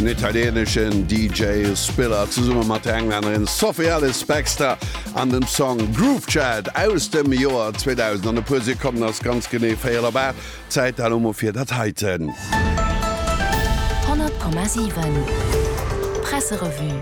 Den italieneschen DJ Spiller zesumme mat der Englännerin Sophie Ellis Bextor an dem Song Groove Chat aus dem Joer 2000. An e puer Sekonnen ass ganz genee 4 op 8. Zäit elo mol fir dat heiten. 100,7 Presserevue.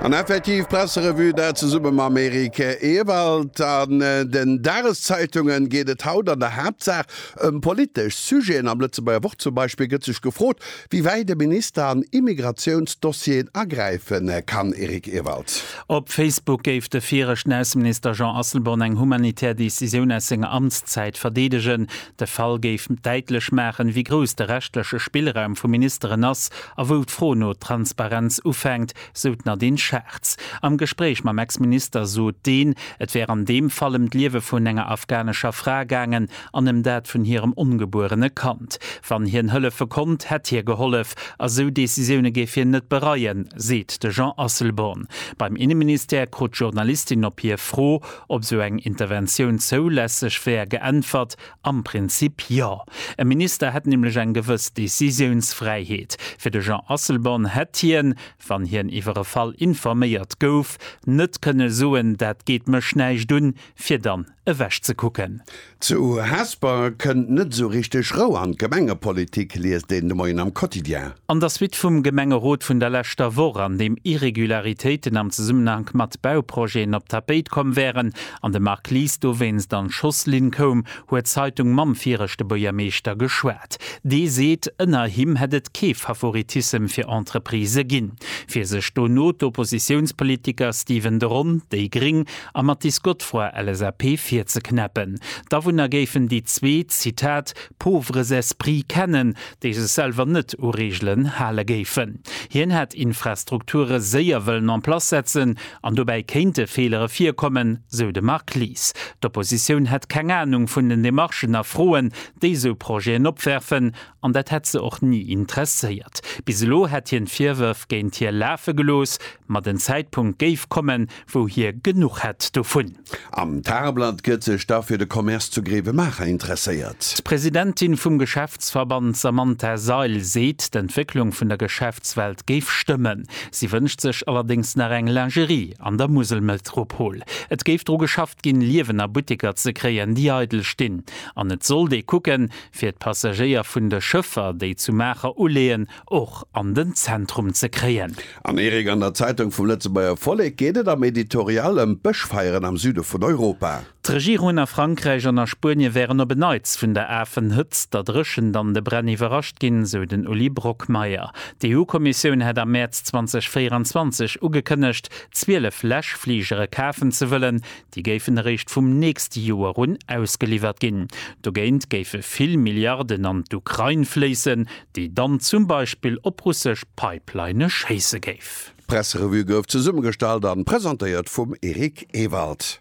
An effektiv, Presserevue, dat zesumme mam Eric Ewald. An den Dageszeitungen geet et haut an der Haaptsaach Ëm politesch Sujeten am Lëtzebuerger Wort zum Beispill gëtt sech gefrot, wéi wäit de Minister an Immigratiounsdossieren agräife kann. Eric Ewald. Op Facebook géif de viregten Ausseminister Jean Asselborn eng humanitär Decisioun aus senger Amtszäit verdeedegen. De Fall géif däitlech maachen, wéi grouss de rechtleche Spillraum vu Ministeren ass a wou d'Fro no Transparenz ufänkt, sou d'Nadine Schartz. Am Gespréich mam Ex-Minister sot deen, et wär an deem Fall ëm d'Liewe vun enger afghanescher Fra gaangen. an ëm dat vun hirem ongebuerene Kand. Wann hien hëllefe konnt, hätt hie gehollef. A sou Decisioune géif hien net bereien, seet de Jean Asselborn. Beim Inneministère krut d'Journalistin op hir Fro, ob sou eng Interventioun zoulässeg wär, geäntwert, Am Prinzip jo. E Minister hätt nämlech eng gewëss Decisiounsfräiheet. Fir de Jean Asselborn hätt hien, wann hien iwwer e Fall informéiert gouf, net kënne soen, dat geet mech näischt un, fir dann ewech ze kucken. Zu Hesper kënnt net esou richteg Rou an d'Gemengepolitik, liest een de Moien am Quotidien. An der Suite vum Gemengerot vun der leschter Woch, an deem Irregularitéiten am Zesummenhank mat Bauprojeten op d'Tapéit komm wären, an de Marc Lies dowéinst an d'Schosslinn koum, huet d'Zeitung mam viregte Buergermeeschter geschwat. Dee seet, ënner him hätt et kee Favoritissem fir Entreprisë ginn. Fir sech dono d'Oppositiounspolitiker Steven de Ron, déi gréng, a Mathis Godefroy, LSAP, virzeknäppen. D'Awunner géifen déi zwee, Zitat, pauvres esprits kennen, déi sech selwer net u Reegelen hale géifen. Hien hätt Infrastrukture séier wëllen en place setzen an dobäi kéinte Feelere virkommen, sou de Marc Lies. D'Oppositioun hätt keng Anung vun den Demarchen a Froen, déi esou Projeten opwerfen, An dat hätt se och ni interesséiert. Bis elo hätt hien d'Virwërf géint hir lafe gelooss, ma den Zäitpunkt géif kommen, wou hie genuch hätt dovun. Am Tageblatt gëtt sech da fir de Commerce zu Grevenmacher interesséiert. D'Presidentin vum Geschäftsverband Samantha Seil seet, d'Entwécklung vun der Geschäftswelt géif stëmmen. Si wënscht sech allerdéngs nach eng Lingerie an der Muselmetropol. Et géif dru geschafft ginn, Liewener Butteker ze kréien, déi eidel stinn. An et sollt ee kucken, fir d'Passagéier vun de Schëffer, déi zu Maacher uleeën, och an den Zentrum ze kréien. Am Erik an der Zeitung vum Lëtzebuerger Vollek geet et am Editorial ëm d'Bëschfeieren am Süde vun Europa. D'Regierungen a Frankräich an a Spuenie wären op en Neits vun der afen Hëtzt, der Dréchent an de Bränn iwwerrascht ginn, sou den Uli Brockmeyer. D'EU-Kommissioun hätt am Mäerz 2024 ugekënnegt, 12 Läschfligere kafen ze wëllen, Déi géifen eréischt vum nächste Joer un ausgeliwwert ginn. Dogéint géife vill Milliarden an d'Ukrain fléissen, déi dann zum Beispill op russesch Pipeline schéisse géif. D'Presserevue gouf zesummegestallt a presentéiert vum Eric Ewald.